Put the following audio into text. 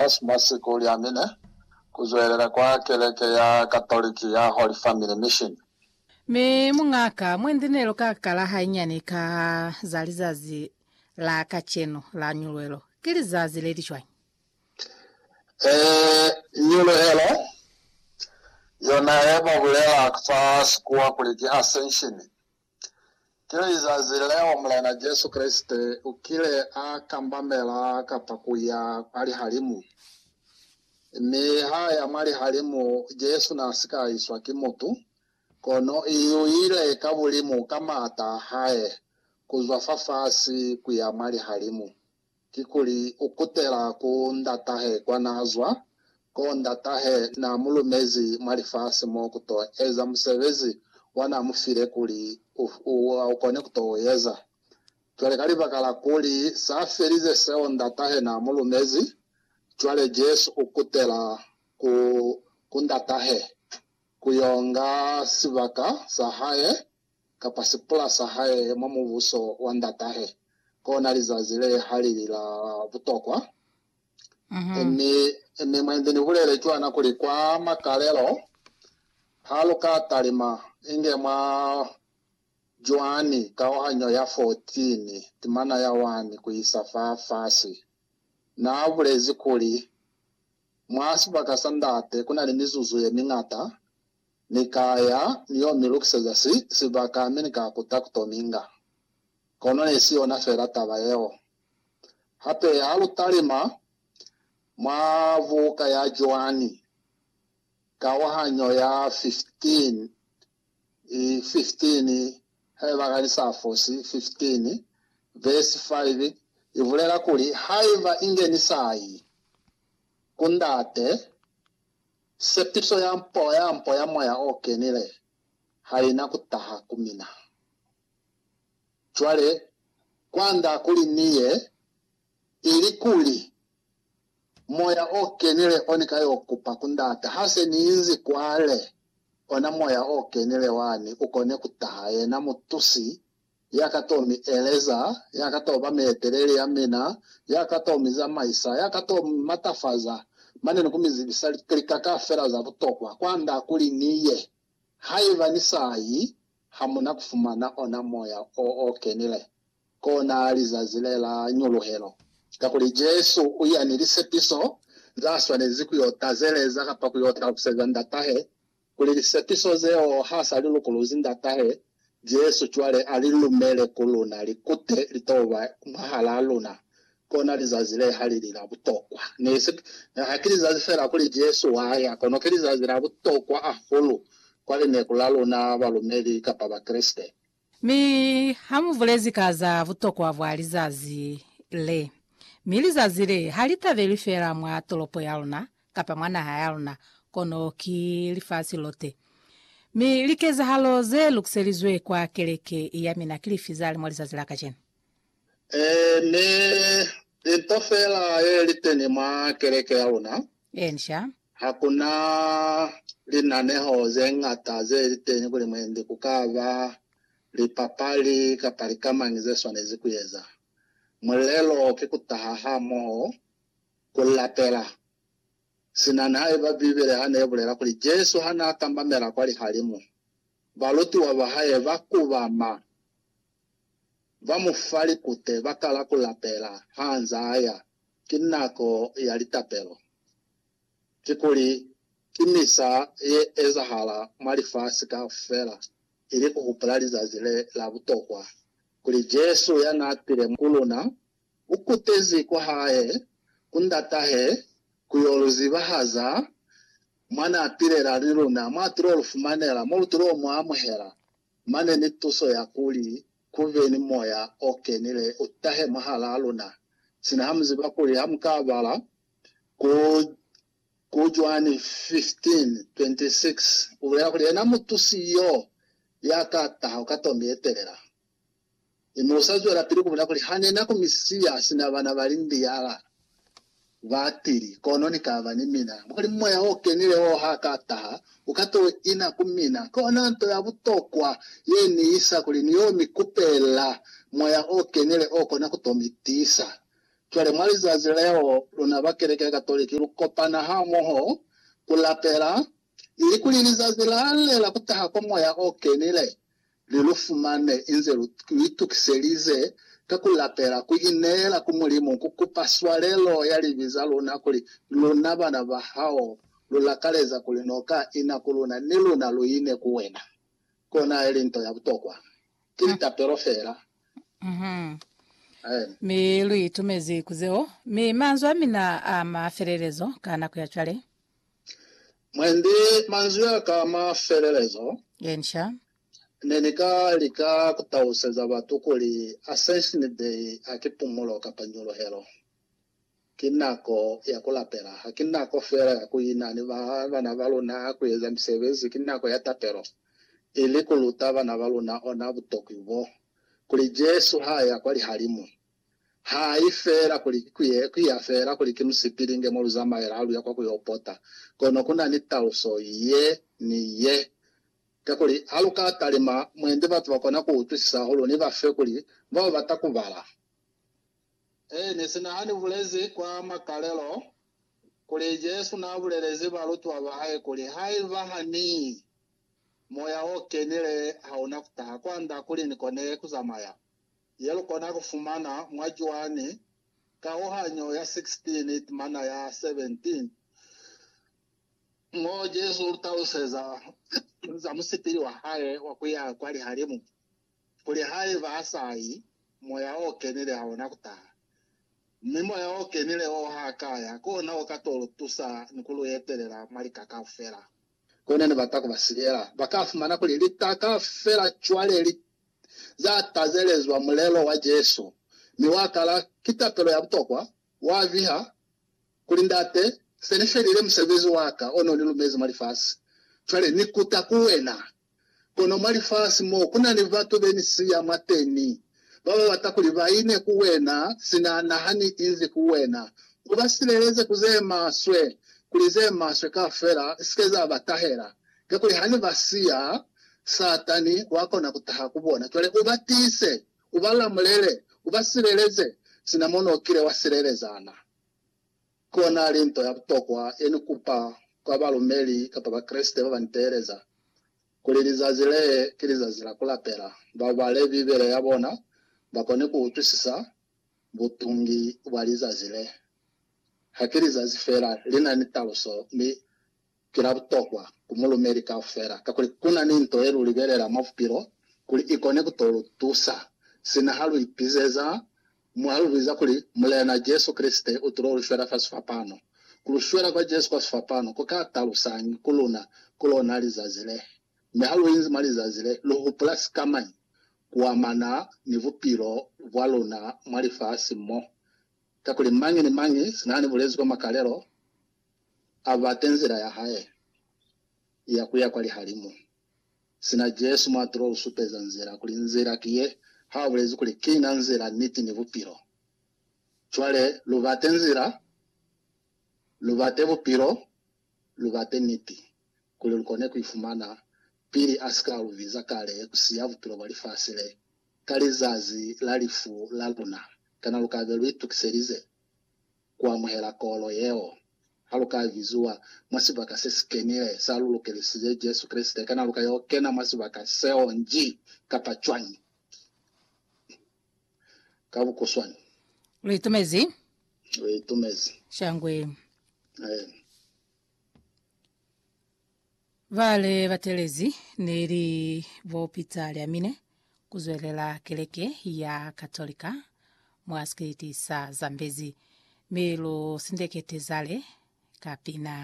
Fa sina siku u liamine ku zwelela kwa keleke ya Katoliki ya Holy Family Mission. Mi muñaka mwendi nelo ka kala hainyani ka za lizazi la kacenu la ñuluhelo. Ki lizazi leli cwañi? Ee, ñuluhelo, yona ye ba bulela fa sikuwa kuli ki Ascension, Ki lizazi leo Mulena Jesu Kreste ukile a kambamela kapa kuya kwa lihalimu. Mi haaya mwa lihalimu, Jesu naasika iswa ki mutu, kono iuile ka bulimu ka maata ahae, kuzwa fafasi kuya mwa lihalimu. kikuli u kutela ku ndatahe kwa naa zwa, koo ndatahe naa mu lumezi mwa lifasi mo ku to eza musebezi wa naa mu file kuli u kone ku to u eza. Cwale ka libaka la kuli sa felize seo ndatahe naa mu lumezi, cwale Jesu u kutela ku ku ndatahe ku yo nga sibaka sa hae kapa sipula sa hae mwa Mubuso wa Ndatahe, kona lizazi le ha li li la butokwa. Mi, mi mwa inze ni bulele cwana kuli kwa makalelo, ha lu ka talima inge mwa Joani kauhanyo ya 14, timana ya 1 ku isa fa fasi, na bulezi kuli, Mwa sibaka sa Ndate ku na ni mizuzu ye miñata, Ni ka ya, ni yo mi lukiseza si, sibaka, mi ni ka kuta ku to minga. Kono ne si yona fela taba yeo. Hape ha lu talima mwa buka ya Joani, kauhanyo ya 15, i, 15, haiba ka ni sa fosi, 15, vesi 5, i bulela kuli, Haiba inge ni sa yi ku Ndate, Sepiso ya mpo ya mpo ya Moya o Kenile ha ina ku taha ku mina. Cwale, kwand'a kuli Ni ye, ilikuli Moya o Kenile o Ni ka y'o kupa ku Ndate, ha se Ni inzi kwale, ona Moya o Kenile wani u kone ku taha, yena mutusi ya ka to mi eleza, ya ka to ba mieteleli ya mina, ya ka to mi zamaisa, ya ka to mi matafaza, mane ni ku mi zibisa lika kaufela za butokwa kwa nda kuli ni ye. Haiba ni sa yi, ha mu na ku fumana ona Moya o o Kenile kona lizazi le la Ñuluhelo, kakuli Jesu u ya ni lisepiso za swanezi ku yo tazeleza kapa ku yo taluseza Ndatahe Kuli lisepiso zeo ha sa li lukuluzi Ndatahe, Jesu cwale a li lumele ku luna li kute li t'o ba mwahal'a luna. Kona lizazi le ha li li la butokwa. Nisi, ne ha ki lizazi fela kuli Jesu wa ya, kono ki lizazi la butokwa ahulu kwa lineku la luna balumeli kapa Bakreste. Mi ha mu bulezi ka za butokwa bwa lizazi le, mi lizazi le ha li tabelwi fela mwa tolopo ya luna kapa mwa naha ya luna, kono ki lifasi lote. Mi likezahalo ze lukiselizwe kwa keleke ya mina ki lifi za li mwa lizazi la kacenu? Ee, mi linto fela ye li teni mwa keleke ya luna Inca. Ha ku na linaneho ze ñata ze li teñi kuli mwendi ku ka ba lipapali kapa lika mañi ze swanezi ku eza. Mulelo ki ku taha hamoho ku lapela. Sina nihaiba Bibele ha ne bulela kuli Jesu ha n'a tambamela kwa lihalimu, balutiwa ba hae ba kubama Ba mu fa likute ba kala ku lapela ha nza ya. Ki nako ya litapelo. Kikuli, ki misa ye ezahala mwa lifasi kaufela ili ku hupula lizazi le la butokwa, kuli Jesu ya n'a tile ku luna, u kutezi kwa hae ku Ndatahe ku yo lu zibahaza mwa n'a pilela ni luna, mwa tul'o lu fumanela, mo lu tul'o mu amuhela. mane ni tuso ya kuli ku be ni moya o kenile u tahe mwahalaa luna. Sina ha mu ziba kuli ha mu ka bala ku, ku Juani 15:26, u bulela kuli, Yena Mutusi yo ya ka taha ku ka tongi ye telela. Mi mu sa zwelapili ku bona kuli ha ne na kumisiya sina bana ba lindiala ba tili, kono ni ka ba ni mina. Mwa kuli Moya o Kenile wo ha ka taha, u ka t'o ina ku mina. Kona nto ya butokwa ye ni isa kuli ni y'o mi kupela Moya o Kenile o kona ku t'o mi tiisa. Cwale, mwa lizazi leo, luna ba keleke ya Katoliki lu kopana hamoho ku lapela, ilikuli lizazi la le la ku taha kwa Moya o Kenile li lu fumane inze lu itukiselize ka ku lapela, ku ineela ku Mulimu, ku kupa swalelo ya libi za luna, kuli luna bana ba hao lu lakaleza kuli no ka ina ku luna, ni luna lu ine ku wena. Kona ili nto ya butokwa. Ki litapelo fela. Amen. Mi lu itumezi ku zeo. Mi manzwi a mina a mafelelezo ka nako ya cwale. Mwendi manzwi a ka a mafelelezo, ne ni ka lika ku taluseza batu kuli Ascension Day ha ki pumulo kapa nyuluhelo. Ki nako ya ku lapela. Ha ki nako fela ya ku ina ni bana ba luna ku eza misebezi. Ki nako ya tapelo, ili ku luta bana ba luna ona butokwi bo, kuli Jesu ha ya kwa lihalimu, Ha i fela kuli ki kuye, ku ya fela kuli ki musipilinge mo lu zamaela ha lu ya kwa ku yo pota. Kono ku na ni taluso ye ni ye. Kakuli ha lu ka talima mwendi batu ba kona ku utwisisa hahulu ni ba fe kuli ba ba bata ku bala. Eeni, sina ha ni bulezi kwa makalelo kuli Jesu n'a bulelezi balutiwa ba hae kuli, Haiba ha Ni, Moya o Kenile ha u na ku taha kwanda kuli ni kone ku zamaya. yelukona kufumana mwa Joani kauhanyo ya 16 itimana ya 17, mo Jesu ulutaluseza za musipili wahae wa kuya kwa lihalimu, kuli haiba asayi, Moya o Kenile haona kutaha. Mi Moya o Kenile oo haakaya, kona uka to lutusa ni kuluetelela mwa lika kaufela. Kona nebata kuba silela, bakafumana kuli lika kaufela cwale li za tazelezwa mulelo wa Jesu, mi wa kala ki tapelo ya butokwa, wa viha kuli, Ndate, se ni felile musebezi wa ka o no ni lumezi mwa lifasi. Cwale ni kuta ku wena. Kono mwa lifasi mo ku na ni batu be ni siya mwateni, ba ba bata kuli ba ine ku wena sina na ha ni izi ku wena, U ba sileleze ku ze maswe, kuli ze maswe kaufela si ke za ba tahela. Kakuli hane ba siya, Satani wakona kutaha ku bona. Cwale u ba tiise, u ba lamulele, u ba sileleze, sina mo no kile wa sileleza na. Kona li nto ya butokwa ye ni kupa kwa balumeli kapa Bakreste ba ba ni teeleza, kuli lizazi le ki lizazi la ku lapela, ba bale Bibele ya bona, ba kone ku utwisisa butungi bwa lizazi le. Ha ki lizazi fela, li na ni taluso, mi ki la butokwa ku mulumeli kaufela, kakuli ku na ni nto ye lu libelela mwa bupilo kuli i kone ku to lu tusa, sina ha lu ipizeza mo ha lu biza kuli, Mulena Jesu Kreste u tulo lu shwela fa sifapano. Ku lu shwela kwa Jesu kwa sifapano ku ka talusañi ku luna ku lona lizazi le? Mi ha lu inzi mwa lizazi le, lu hupula sikamañi ku amana ni bupilo bwa luna mwa lifasi mo? Kakuli mañi ni mañi sina ni bulezi kwa makalelo, A bate nzila ya Hae ya ku ya kwa lihalimu. Sina Jesu mwa tulo u supeza nzila, kuli nzila ki ye, ha a bulezi kuli, Ki na nzila, niti, ni bupilo. Cwale, lu bate nzila, lu bate bupilo, lu bate niti, kuli lu kone ku i fumana, pili A si ka lu biza kale ku siya bupilo bwa lifasi le, ka lizazi la lifu la luna. Kana lu ka be lu itukiselize? ku amuhela kolo yeo. Ha lu ka biziwa mwa sibaka se si kenile sa lu lukelisize Jesu Kreste, kana lu ka yo kena mwa sibaka seo nji kapa cwañi? Ka bukuswani. Lu itumezi? Lu itumezi. Shangwe. Aye. Bale batelezi neli bo Peter Lyamine kuzwelela keleke ya Katolika mwa sikiliti sa Zambezi, mi lu sindekete zale ka pina.